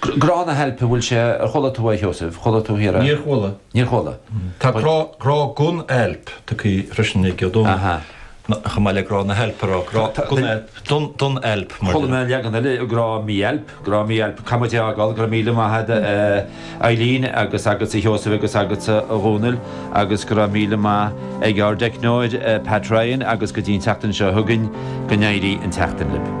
Grá na hailpe, bhfuil sé, ar chuala tú é, a Sheosaimh, chuala tú thiar é? Níor chuala. Níor chuala. Tá grá, grá gon ailp tugthaí freisin ag Ó Dónaill, chomh maith le grá na hailpe a rá, grá gon ailp, don, don ailp. Chuala mé an leagan eile, grá mí-ailp, grá mí-ailp, caithfidh muid é a fhágáil, go raibh míle maith a'd a Eileen agus agatsa a Sheosaimh agus agatsa a Dhónaill agus go raibh míle maith ag ár dteicneoir Pat Ryan agus go dtí an tseachtain seo chugainn, go n-éirí an tseachtain libh.